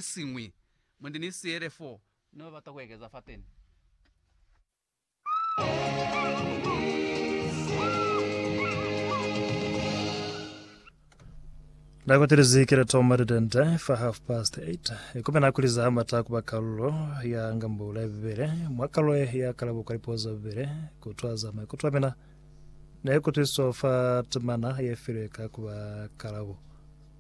siñwi mwa nde ni siele fo ne ba bata ku ekeza fateni. Nako telezi kele toma lidende fa half past 8 ikume nako liza hamata kuba kalulo ya ngambula ya bibele mwa kalulo ya kalabo kwa lipo za bibele kutwaza maikuto amena ne kutwiso fa temana ye filwe ka kuba kalabo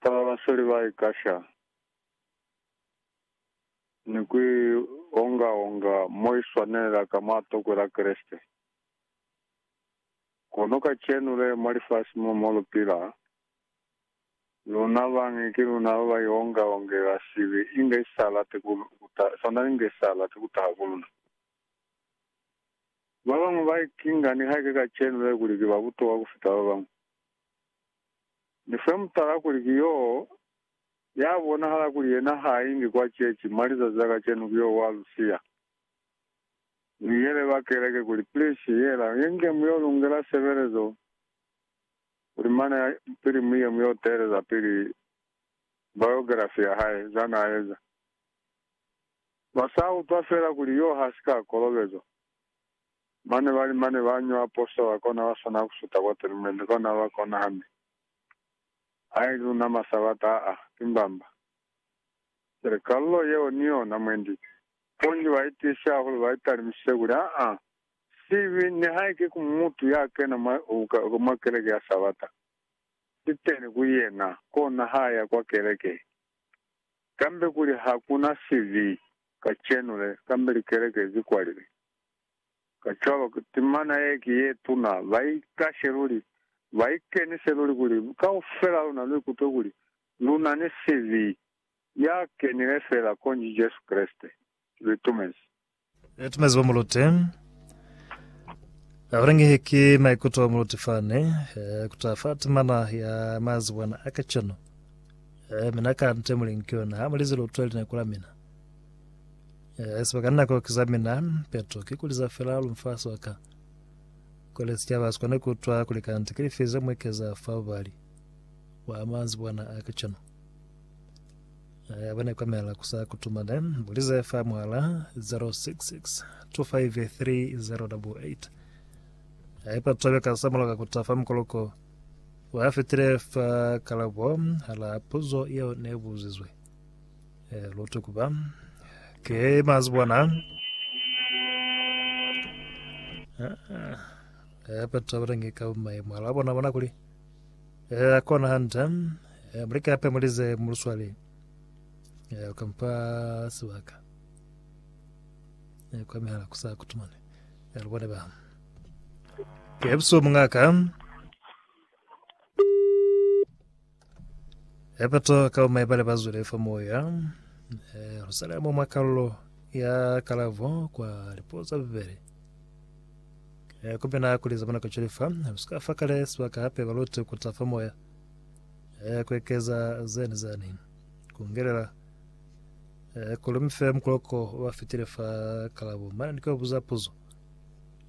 Fa ba ba seli ba ikasha ni ku i onga-onga mo i swanelela ka mwa tokwe la Kreste, kono kacenu le, mwa lifasi mo, mo lu pila, luna bañi ki luna ba ba ionga-ongela sibi inge i sa lati ku, ku taha, sanda inge i sa lati ku taha ku luna. Ba bañwi ba ikinga nihaike kacenu le kuli ki ba butokwa ku fita ba bañwi. Ni fe mutala kuli ki yo ya bonahala kuli yena ha ingi kwa ceci mwa lizazi la kacenu ki yo wa lu siya. Ni yele ba keleke kuli, Please, yela, ye nge mu yo lungela sebelezo, kuli mane ya pili mu ye mu yo teeleza pili biography ya hae, za na eza. Ba sa utwa fela kuli yo ha si ka kolobezwa. Mane bali mane ba nyo apostola kona ba swana ku suta kwa telumente kona ba kona hande. Ai luna ma sabata aa, ki mbamba. Cwale kalulo yeo ni yona mwendi ki. Bunji ba itiisi hahulu ba italimisise kuli, Aa, sibi, nihaike ku mutu ya kena mwa, mwa keleke ya sabata. Si teni ku yena, kona ha ya kwa keleke. Kambe kuli hakuna sibi kacenu le, kambe likeleke zi kwalile. Kacwalo, timana ye ki ye tuna. Ba ikashe luli, ba ikenise luli kuli kaufel'a luna lu ikutwe kuli lu na ni sibi ya kenile fela, konji Jesu Kreste. Ki litumezi. Litumezi kwa mulute. Abalangehe ki maikuto a mulute fani, kuta fa timana ya mazibwana a kacwalo. Mi na ka nte muli nki yona, ha mu li zilutwe lineko la mina. Yes, baka nna koki za mina, Petro, ki kuli za fela lu mfa soka. Kule sicaba si kone kutwa kuli kanti ki lifi ze muekeza fa bubali bwa manzibwana a kacenu. Aya bane kwamela kusa kutumane, bulize fa muhala 066 253 Aya pa twabe ka sa moloka kuta fa mukoloko wa fitile fa kalabo hala puzo yeo ne buzizwe. Eh, lote kuba. Ke mazibona. Eh, batho ba renge ka mai mwala bona bona kuli. Eh, kona hanta. Eh, mulika pe mulize muluswale. Eh, kampa sibaka. Eh, kwa mihala kusa kutumane. Eh, lubone ba. Ke buso mungaka. Epato ka umai bale bazwile fa moya eh, Rusalemo mwa kalulo ya kalavo kwa lipoza bibele eh, kumena kuliza bona kuchilifa usika fa kale sibaka hape balute kuta fa moya eh, kwekeza zeni zani kungelela eh, kulumife mkuloko wafitile fa kalabo mana ndiko buza puzo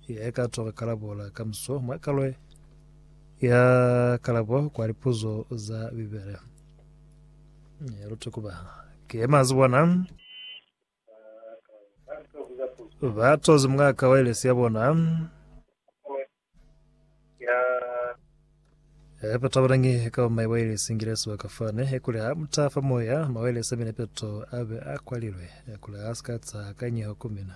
ye ka toka kalabo la kamso mwa kalwe Ya kalabo kwa lipuzo za Bibele. Ya lute kuba ki ye mazi bona. Ba tozi mwaka wa ilesi ya bona. Eh, peto abalangi ka umai wa ilesi ngilesi wa kafane ekuli ha mutafa moya mawelesi amene peto abe akwalilwe ekuli asikatsa kanyeho kumina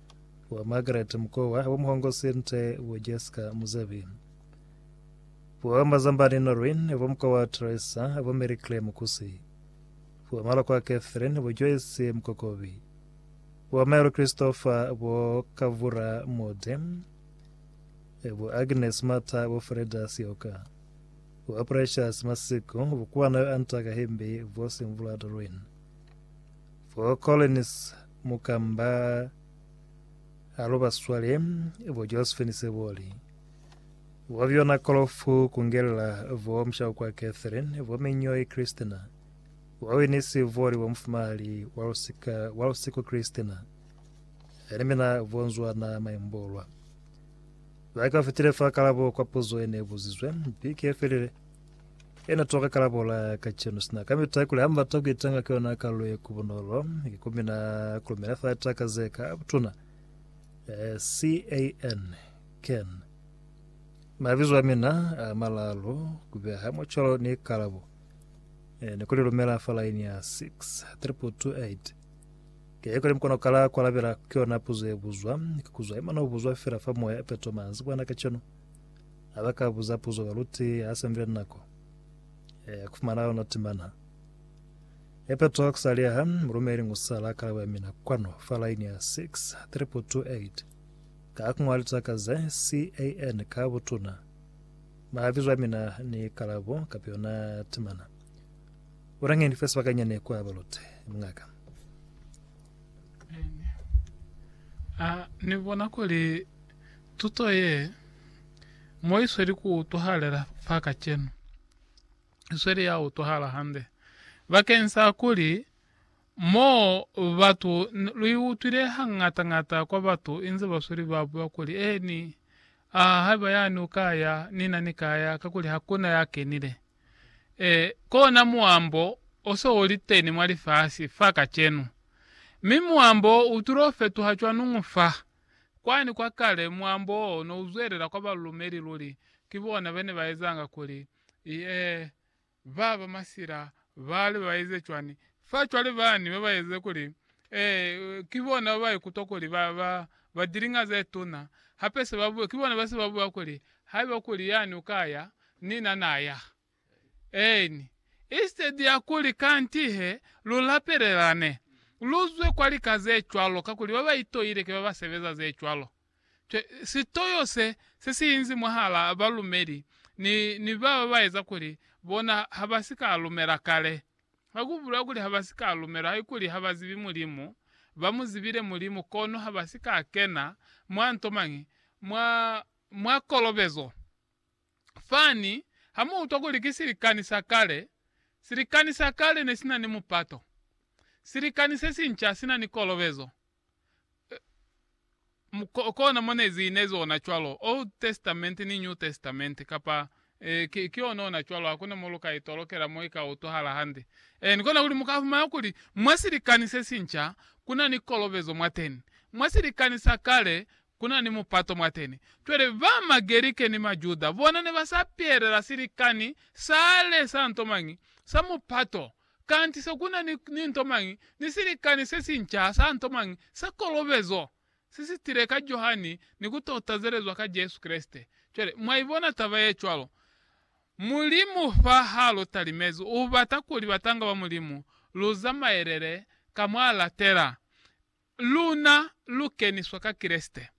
Bo Margaret Mukowa, bo Muhongo Sinte, bo Jessica Muzebi. Bo Mazambani Noreen, bo Mukowa Teresa, bo Mary Claire Mukusi. Bo Malokwa Catherine, bo Joyce Mukokobi. Bo Mary Christopher, bo Kavura Mode. Bo Agnes Mata, bo Freda Sioka. Bo Precious Masiku, bo Kuwanayo Anta Kahimbi, bo Simvula Doreen. Bo Collins mukamba halo baswale bo Josephine Seboli bo Fiona Kolofu kungelela bo Mshaukwa Catherine bo Minyoi Christina bo Winnie Seboli bo mufumahali wa lusika wa lusiku Christina ni mina bo Nzwana Maimbolwa baka fitile fa kalabo kwa puzo ene buzizwe bike felile Yena toka kalabola kacenu sina kamita kuli hambata kuitanga ki yona kalu ye kubunolo ki kumina kulumela fa taka zeka butuna eh, can can mabizo amina a malalu kubeha mucolo ni kalabo eh, ni kulilumela fa laini ya 63228 ke kuli mkono kala kwalabela ki yona puzo ye buzwa ki kuzwa imana ubuzwa fela fa moya peto manzi bwana kacenu Ha ba ka buza puzo baluti ha se ndu ya nako ya ku fumana yona timana ya peto ku sa liha, mulumeli n'o sa la kalabo ya mina kwanu fa laini ya 6228 ka ku ñwali taka ze CAN ka butuna. Mabizo a mina ni kalabo kapa yona timana. Una nge ni fe sebakanyani kwa baluti, mungaka. Amen. A ni bona kuli Tuto ye mo i sweli ku utwahalela fa kacenu. I sweli ya utwahala hande bakeni sa kuli mo batu, lu i utwile hañata-ñata kwa batu inze ba sweli ba bua kuli, Eeni, a haiba yani u ka ya, ni na ni ka ya, kakuli hakuna ya kenile. E, kona muambo o se u li teni mwa lifasi fa kacenu. Mi muambo wo u tulo fetoha cwanuñu fa? Kwani kwa kale, muambo wo ne u zwelela kwa balumeli luli ki bona ba ne ba ezanga kuli, Ee, ba ba masila ba li ba eze cwani? Fa cwale bani ba ba eze kuli, Ee, ki bona ba ba ikutwa kuli ba ba ba dilinga ze tuna, hape se ba buya, ki bona ba se ba buya kuli, Haiba kuli yani u ka ya, ni na na ya. Eeni. Instead ya kuli kanti he, lu lapelelane, lu zwe kwa lika ze cwalo, kakuli ba ba itoile ki ba ba sebeza ze cwalo. Cwe, sitoyo se, se si inzi mwahala a balumeli ni, ni ba ba ba eza kuli bona ha ba si ka lumela kale. Ha ku bulela kuli ha ba si ka lumela, haikuli ha ba zibi Mulimu, ba mu zibile Mulimu, kono ha ba si ka kena mwa nto mañi, mwa, mwa kolobezo. Fani ha mu utwa kuli ki silikani sa kale, silikani sa kale ne si na ni mupato. Silikani se sinca si na ni kolobezo. Ee, kona mo ne zi inezi ona cwalo, Old Testament ni New Testament, kapa, ee, ki, ki ona ona cwalo, hakuna mo lu ka itolokela mo i ka utwahala hande. Ee, ni kona kuli mu ka fumana kuli mwa silikani se sinca ku na ni kolobezo mwateni. Mwa silikani sa kale Ku na ni mupato mwateni. Cwale, ba Magerike ni Majuda bona ne ba sa pelela silikani sa le sa nto mañi, sa mupato, kanti se ku na ni, ni nto mañi, ni silikani se si nca sa nto mañi, sa kolobezo, se si tile ka Johani ni ku to tazelezwa ka Jesu Kreste. Cwale, mwa i bona taba ye cwalo. Mulimu fa ha lu talimezi, U bata kuli batanga ba Mulimu lu zamaelele ka mwa latela. Luna lu keniswa ka Kreste.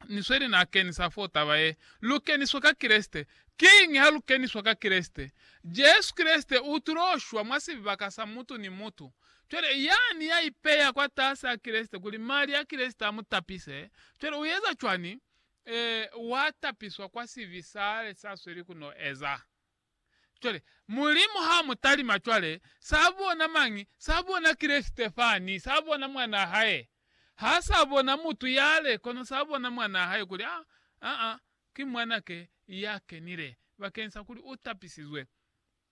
Ni sweli na kenisa foo taba ye, lu keniswa ka Kreste. Kiñi ha lu keniswa ka Kreste? Jesu Kreste u tulo shwa mwa sibaka sa mutu ni mutu. Cwale, yani ya ipeya kwatasi a Kreste kuli mali a Kreste a mu tapise, cwale u eza cwani? Ee, wa tapiswa kwa sibi sale sa sweli ku no eza. Cwale, Mulimu ha mu talima cwale, sa bona mañi? Sa bona Kreste fani, sa bona Mwanaa Hae. Ha sa bona mutu yale, kono sa bona Mwanaa Hae, kuli, A, a, a, ki Mwanake ya kenile, bakeñisa kuli u tapisizwe.